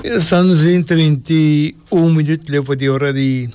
Estamos en treinta i un minut leba di ora di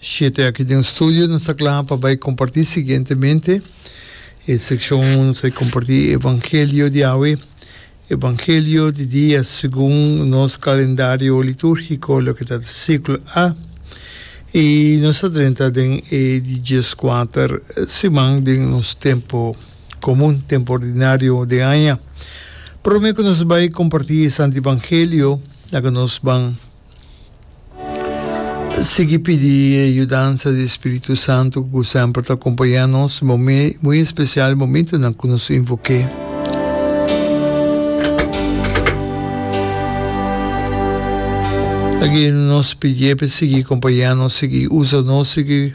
shete aki den studio. Nos ta kla pa bai kompartí siguientemente e sekshon unda nos a kompartí e evangelio di awe. Evangelio di dia segun nos kalendario litúrgiko, loke ta siklo A. I nos ta drenta den e di djeskuater siman den nos tempu. komun, tempu ordinario den aña. Promé ku nos bai kompartí e santu evangelio, laga nos ban sigui pidi e yudansa di spiritu santu ku semper ta kompañá nos momé muy espesial momentunan ku nos invok'é. Laga nos pidié p'e sigui kompañá nos, sigui usa nos, sigui.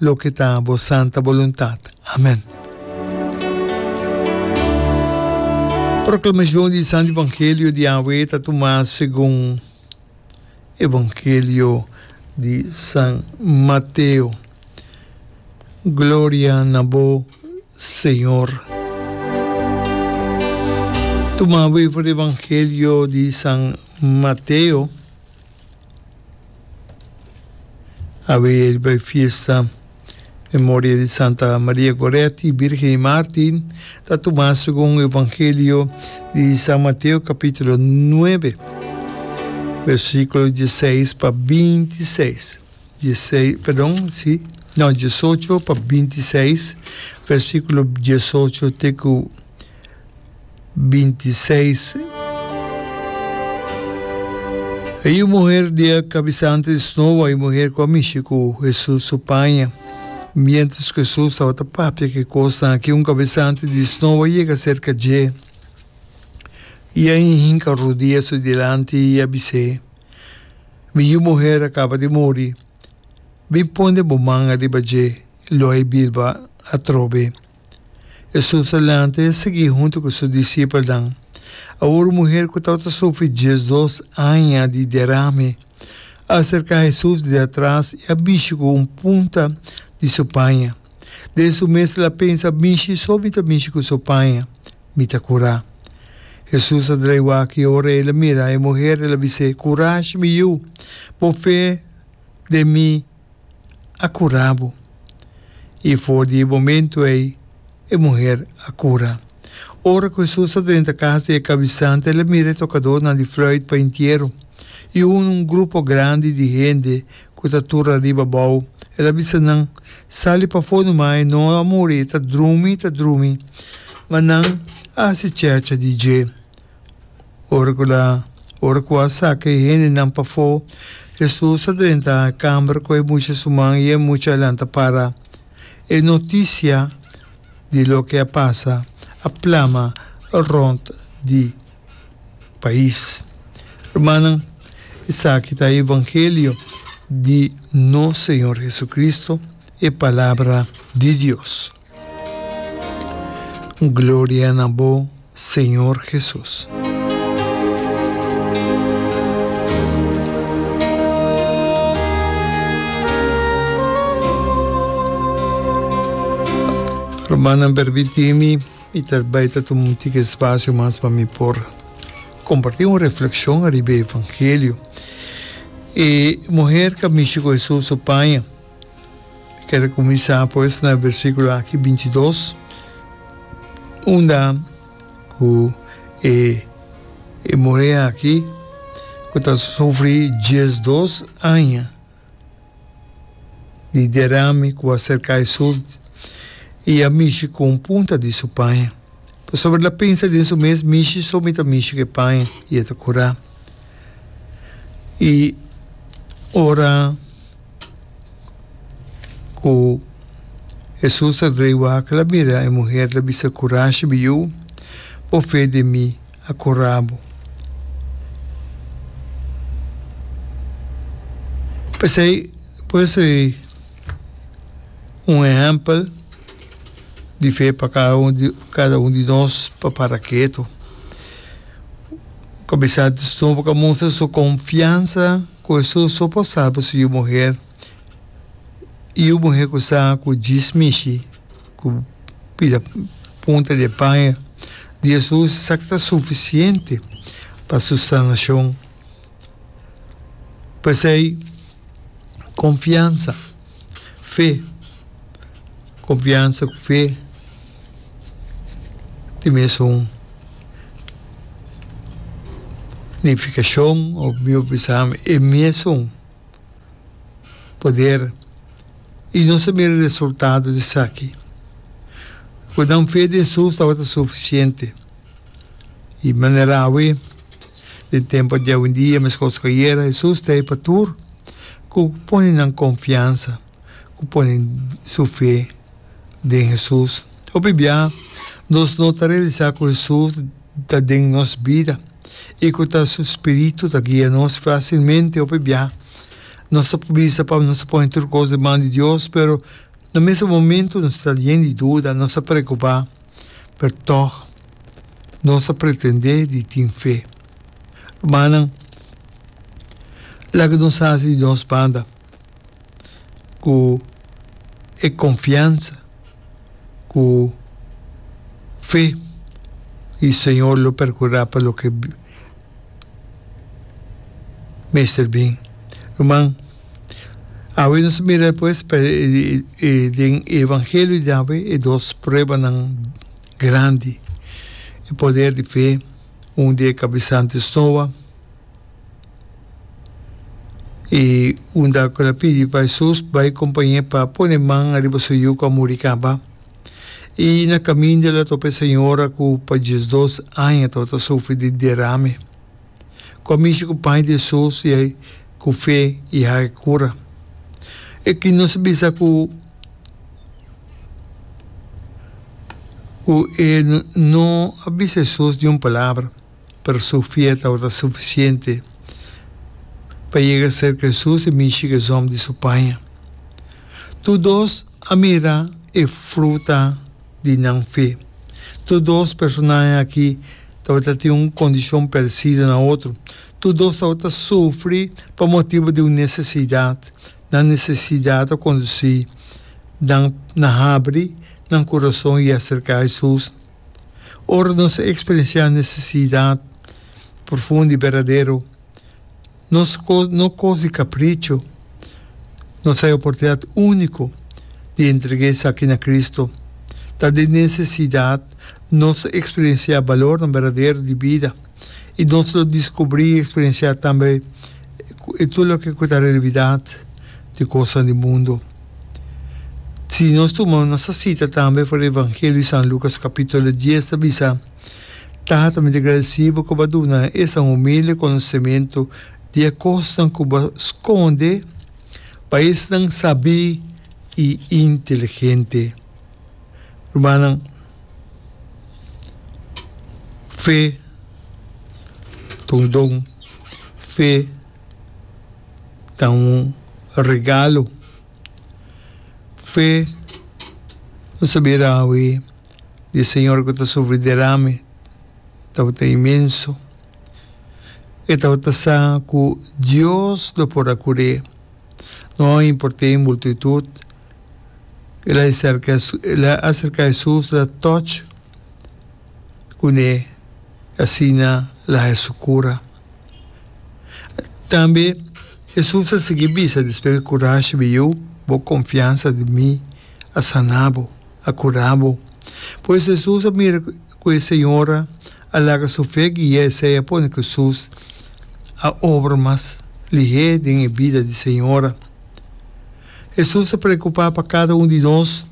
Loke ta Bo santa boluntat. Amen. Proclamacion di Santo Evangelio di Yahwe ta tuma segun Evangelio di San Mateo. Gloria na Bo, Señor. Tuma over Evangelio di San Mateo. Awe riba e fiesta Memoria di Santa Maria Goretti, Birgen di Maarten, ta tuma segun Evangelio di San Mateo capitulo nuebe, versiculo dieseis pa binti i seis, dieseis, perdon, si, no, diesocho pa binti i seis, versiculo diesocho te cu 26. E yu muher di e kabisante di snoa, e muher ku a mishi ku Hesus su paña. Miéntras ku Hesus tabata papia ki kosnan akí, un kabisante di snoa yega serka dje i a hinka rudia su dilanti i a bis'é, Mi yu muher a kaba di muri. Bin pone bo man ariba dje, lo ai bilba atrobe. Hesus a lanta i a sigui huntu ku su disipelnan. Awor un muher ku tabata sufri diesdos aña di derame a aserká Hesus di atras i a bishi ku un punta di su paña, Den su mes el a pensa, Mishi, so mi ta mishi ku su paña, mi ta kurá. Hesus a drai wak i ora el a mira e muher, el a bis'é, Kurashi, mi yu, bo fe den mi a cura bo. Y for di e momento ey e muher a cura. Ora cu Jesús ta drenta cas di e cabizante, el a mira e tocadornan di fluit paintiero y hunga un grupo grandi di hende cu ta tur ariba abao. El a bisa nan, Sali pafo nu ma, e no a muri, e ta drumi, ta drumi. Ma nan a haci chercha di dje. Ora ku la ora ku a saka e hendenan pafó, Hesus a drenta kamber ku e mucha suman i e mucha a lanta para. E notisia di loke a pasa a plama rònt di pais. Rumannan, esaki ta evangelio di nos Señor Hesukristu, e Palabra di Dios. Gloria na bo Señor Jesus. Rumannan permitimi i ta bai ta tuma un tic espacio mas pa mi por comparti un reflexion ariba e evangelio. E muher ca mishi cu Hesus su paña Mi ker a kuminsá pues na versíkulo aki binti i dos, unda ku e e muhé aki ku ta sufri dies dos aña di derami ku a serká e sult i a mishi ku un punta di su paña, pasobra el a pensa den su mes, Mishi so mi ta mishi ku e paña, i e ta kurá. I ora. Ku Hesus a drei wak, el a mira e muher, el a bisa, Kurashi bi yu, bo fe den mi a kura bo. P'esei por eso e un ehèmpel di fe pa kada un di kada un di nos pa para ketu. Ku a bisa, bo ka mustra su konfiansa. Ku esu so por sabe su yu muher i yu muher ku sa ku djis mishi ku bida punta di e paña di Jesus sa ta sufisiente pa su sanashon. P'esei konfiansa. Fe, confiansa cu fe di mesun nificacion of mi bisa e mesun poder y no sa mira resultado di esaki. Cu nan fe den sus tabata suficiente. I manera awe, den tempu di awendia meskos ku ayera, Hesus ta e Patur ku pone nan konfiansa, ku pone su fe den Hesus. Hopi bia nos no ta realisá ku Hesus ta den nos bida i ku ta su Spiritu ta guia nos fásilmente. Hopi bia nos ta bisa pa nos ta pone tur kos den man di Dios, pero na mesun momentu nos ta yen di duda, nos ta preokupá. Pertòg, nos a pretendé di tin fe. Rumannan, laga nos hasi di nos banda ku e konfiansa ku fe di Señor lo perkurá pa loke mester bin. Ruman. Awe nos mira pues pa e den e evangelio di awe e dos pruebanan grandi, e poder di fe, un di e kabisa antes Noa, i unda ku el a pidi pa Hesus bai kompañ'é pa pone man ariba su yuku a muri kaba, i na kaminda el a topa e señora ku pa diesdos aña tabata sufri di derame. ku a mishi ku paña di Hesus i ei ku fe i haya e kura. E ki nos a bisa ku ku e no a bisa Hesus niun palabra, pero su fe tabata sufisiente pa yega serka Hesus i mishi ku esom di su paña. Tur dos a mira e fruta di nan fe. Tur dos personahe aki tabata tin un kondishon paresido na otro. Tur dos tabata sufri pa motibu di un nesesidat. Nan nesesidat a kondusí nan na habri nan kurason i aserká Hesus. Ora nos a eksperensiá nesesidat profundo i berdadero, Nos no kos di kapricho. Nos ta e oportunidat úniko di entregá esaki na Kristu. Ta den nesesidat nos ta eksperensiá balornan berdadero di bida i nos lo diskubrí i eksperensiá tambe e tur loke ku ta realibidat di kosnan di mundu. Si nos tuma nos ta sita tambe for di Evangelio di San Lucas kapítulo dies ta bisa, Tata, mi ta gradesí bo ku bo a duna esta humilde konosementu di e kosnan ku bo a skonde pa esnan sabí i inteligente. Rumannan, fe ta un don, fe ta un regalo. Fe no sabí rawe. di e señor ku ta sufri derame tabata inmenso. E tabata sa ku Dios lo por a kur'é, no a import'é e multitut. El a serka, el a aserká Hesus, el a touch kuné, i asina el a haña su kura. Tambe Hesus a sigui bisa, Despues ku e kurashi bin yu, bo konfiansa di mi a saná bo. a cura bo. Pues Hesus a mira cu e señora a laga su fe guia esey a pone cu Hesus a obra mas lihé den e bida di señora. Hesus ta preocupa pa cada un di nos.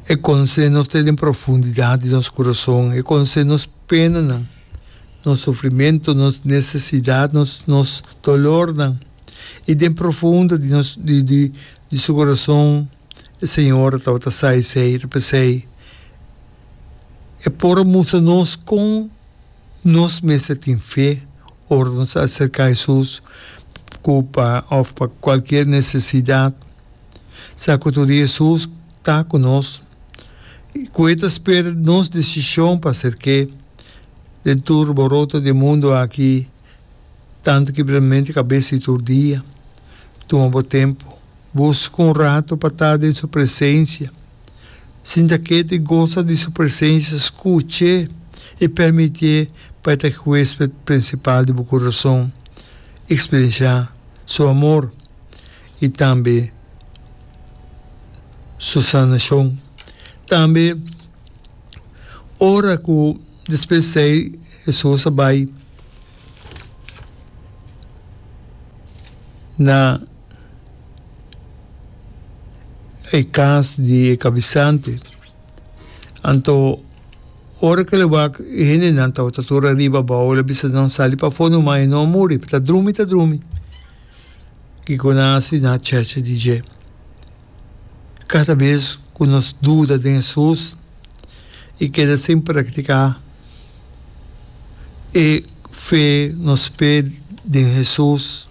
E conoce nos te den profundidad di nos curason. E conoce nos penanan, nos sufrimento, nos necesidad, nos dolornan y den profundo di nos di Di su corazon e Señor a tabata sa esey, ta pesey, E por a mustra nos con nos mester tin fe ora nos a acerca Jesús cu pa of pa cualkier necesidad. Sa cu tur di Jesús ta cu nos y cu e ta spera nos decision pa hacer ke den tur boroto di e mundo aki. Tantu ki primeramente kabes di tur dia. Tuma bo tempu. Buska un ratu pa ta den su presensia. Sinta ketu i gosa di su presensia. Skuch'é i permitié pa e ta huesped prinsipal di bo kurason. Eksperensiá su amor i tambe su sanashon. Tambe ora ku despues dei Hesus a bai. Na e cas di e cabizante, anto ora cu lo wak e hendenan tabata tur ariba abao, el a bisa nan sali pa fondo, ma e no a muri, ta drumi, ta drumi. Kico nan a haci? Nan a cheche di dje. Cada bes cu nos duda den e sus, e keda sin practica. e fe nos p'e den Hesus,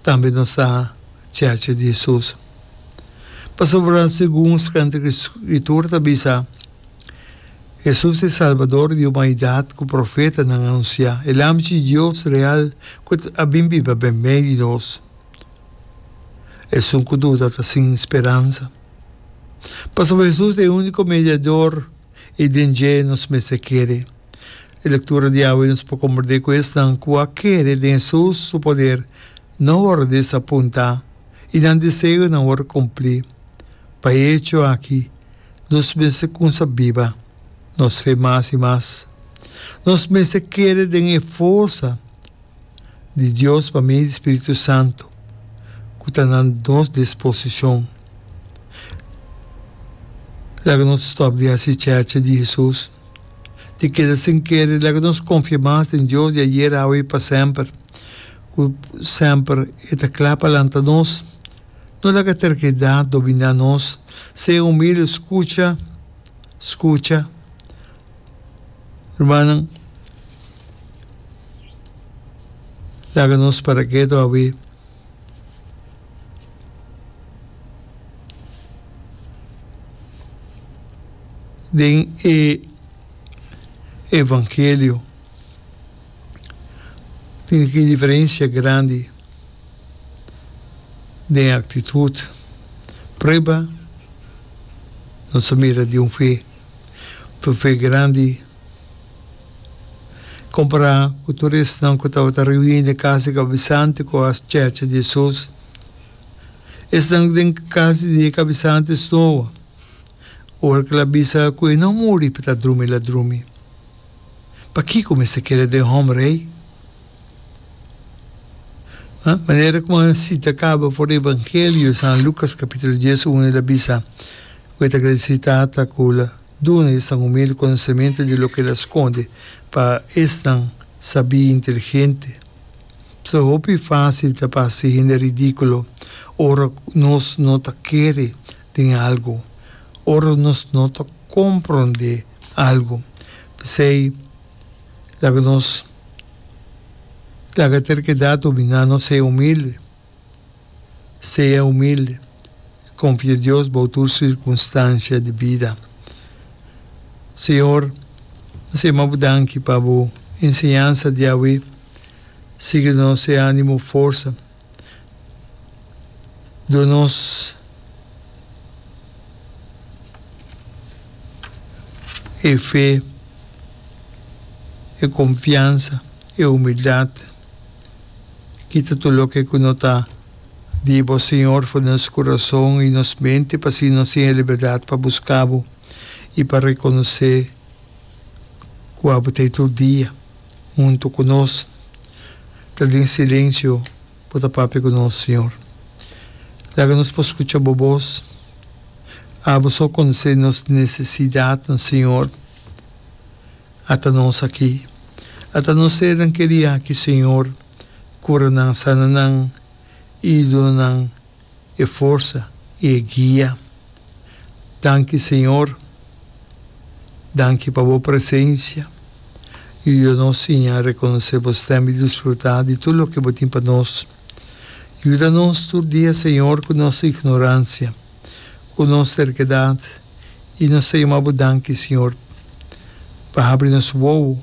tambe nos ta chacha di Hesus. Pasobra segun Santa Skritura ta bisa, Hesus e Salbador di humanidat ku profetanan a anunsiá, e Lam di Dios real ku a bin biba den medio di nos. Esun ku duda ta sin speransa, pasobra Hesus ta e úniko mediador. I den dje nos mester kere. E lektura di awe nos por komprendé ku esnan ku a kere den Hesus su poder no wòrdu disapuntá i nan deseonan wòrdu kumplí. Pa e hecho aki nos mester kumsa biba nos fe mas i mas. Nos mester kere den e forsa. di Dios pa medio di Spiritu Santu cu ta na nos disposicion. Laga nos stop di haci chacha di Jesus, di keda sin kere i laga nos confia mas den Dios di ayer, awe i pa semper, cu semper e ta cla pa lanta nos. No laga terquedad domina nos. Sea humilde, scucha, scucha, Rumannan, laga nos para ketu awe. Den e evangelio tin aki un diferensia grandi den aktitut. Prueba nos a mira di un fe. Buffet grandi. Compará cu tur esnan cu tabata reuní den cas di cabizante cu a checha di Jesús, esnan den cas di e cabizante snoa ora cu el a bisa cu e no muri pa ta drumi el a drumi. Pakico mester keda den homber ei? Nan manera ku nan sita kaba for Evangelio di San Lukas kapitulo dies unu el a bisa, Ku e ta gradisí Tata ku el a duna esnan humilde konosementu di loke el a skonde pa esnan sabí i inteligente. So hopi fásil ta pa hasi hende ridíkulo ora nos no ta kere den algu, ora nos no ta komprondé algu. P'esei, Laga nos laga terkedad dominá nos, sea humilde, sea humilde, konfia Dios bou tur sirkunstansia di bida. Señor, N sema Bo danki pa Bo enseñansa diawe, sigui nos e ánimo, forsa. do nos e fe, e confiansa, e humildad. Kita tur loke cu no ta di bo, Señor, for di nos corazon y nos mente, pa asina nos tin e liberdad pa busca bo y pa reconoce cu abo ta ey tur dia. huntu ku nos, ta den silensio bo ta papia ku nos, Señor. Laga nos por skucha bo bos. Abo so konosé nos nesesidatnan, Señor. Ata nos aki. Ata nos sernan ke di aki, Señor. Kura nan, sana nan, idunan. e forsa y e guia. Danki Señor, danki pa bo presencia y yuda nos siña reconoce bo stem y disfruta di tur loke bo tin pa nos. Yuda nos tur dia Señor cu nos ignorancia, cu nos terquedad y nos ta yama bo danki Señor pa habri nos wowo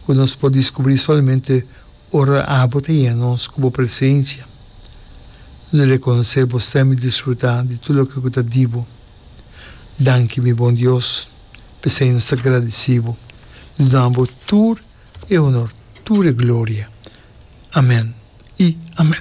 cu nos por discubri solamente Ora abo ta yega nos cu bo presencia, lo reconoce bo sta mi disfruta di tur loke cu ta di bo. Danki mi bon Dios, p'esey nos ta gradici bo di duna bo tur e honor, tur e gloria. Amen y amen.